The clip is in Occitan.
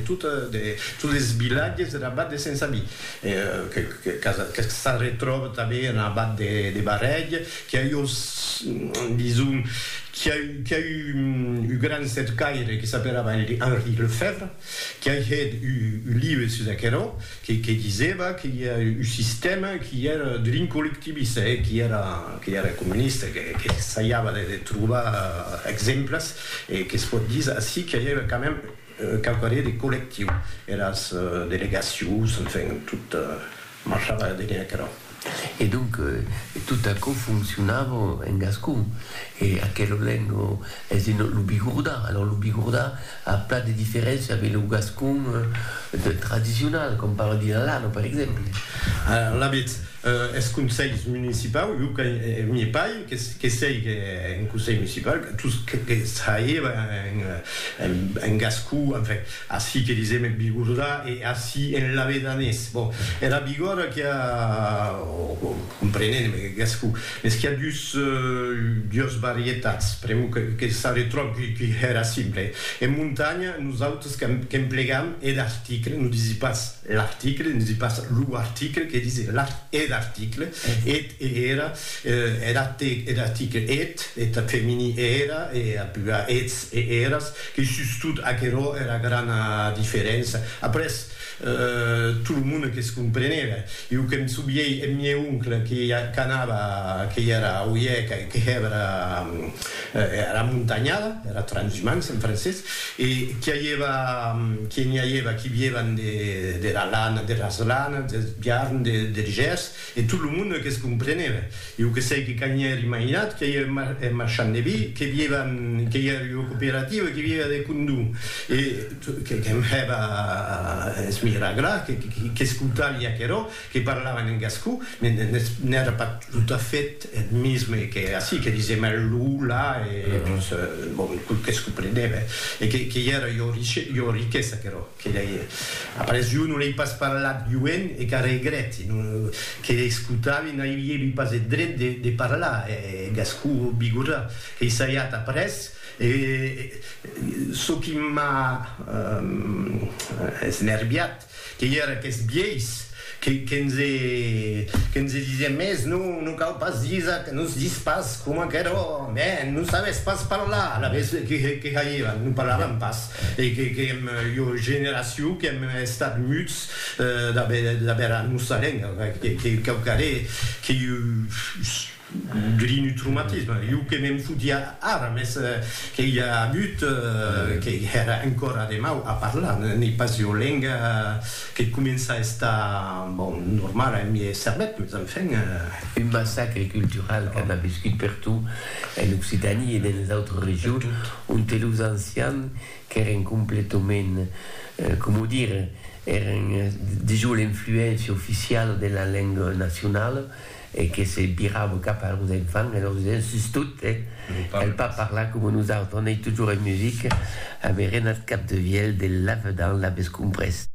Totes es vilatges der abat de Sensabí, que s'arretròba tanben en abat de Barrèg, qui a iós, dison, qui a eu un gran cercaire que s'aperava Henri Lefèvre, qui a hèt un libre sus aquerò, que disèva que i a un sistèma qui èra d'un collectivista e qui èra comunista, que saiava de trobar exemples e que's pòt díser ací que i a quand même Quauqu' années de collectiu, eras delegacions, enfin, tot marchava dene aquerò. E donc, tot aquò foncionava en gascon. E aquela lenga es en lo bigordà. Alors, lo bigordà a plan de diferéncia avec lo gascon tradicional, com parla Dilalano, per exemple. Alavetz, Eth conselh municipau, jo que m'ie paï, que sei qu'en conselh municipau, tous que traïeba en gascon, enfin, ací que disem en bigordà e ací en lavedanés. Bon, era bigòrda qu'i a, comprenent en gascon, mès qu'i a dus, dues varietats, pr'amor que s'arretròb qu'i hèra simple. En montanha, nosautres qu'emplegam er article, non disi pas. L'article, ne dis pas lo article, que dis eth article, eth e era, er article, er article, eth, eth femini e era, e a plural eths e eras, que sustot aquerò era grana diferença. Après, tot lo monde que's compreneve. Jo que'm souviei eth mieu oncle que qu'anava, que i era a Oieca e que hèva era Era montanhada, era transhumance en francés, e qu'i aieva, qu'i n'i aieva qui viévan de, dera lana, deras lanas, deth biarn, de, der gers, e tot lo monde que's compreneve. Iu que sei que cani ère imaginat, qu'i aieve mar, eth marchand de vi, que viévan, qu'i ère ua cooperativa, qu'i viéva de condó, e, que, que'm hèva a esmiragrar, que, qu'i, qu'i, que'scoutavi aquerò, que parlavan en gascon, n'èra pas tot a fait eth misme que ací, que disèm eth lo, la, e tot que es comprenève, e qu'ei era ua riquesa aquerò, que lei, après jo non lei pas parlat joen e qu'a regrèti, que lei escotavi n'aviévi pas eth dret de parlar eth gascon bigorrà, qu'ei saiat après, e çò qui m'a esnerviat, Que i era qu'es biais, que nse disien mès non, non cau pas disa, que nos dis pas coma qu'eró, mè non sabes pas parlar, alavetz que hairan, non parlaran pas, e que èm ua generacion qu'èm estat muts d'aver era nosa lenga, que cau caré que Grinutrumatisme, jo que me'n fotia ara, mès que i a agut, que hèra encòra de mau a parlar, n'ei pas ua lenga que comença a estar, bon, normala en miei cervèth, mès enfin. Un massacre cultural que an aviscut pertot en Occitània e dens les autres regions, onte los ancians qu'èren completament, coma dir, èren dejós l'influéncia oficiala de la lenga nacionala, e que se virava cap a los enfants e lor disent, sustot, eh, cal pas parlar coma nosautres, on ei totjorn en musica, avè renat cap de vièlh de lavedan, l'avètz comprés.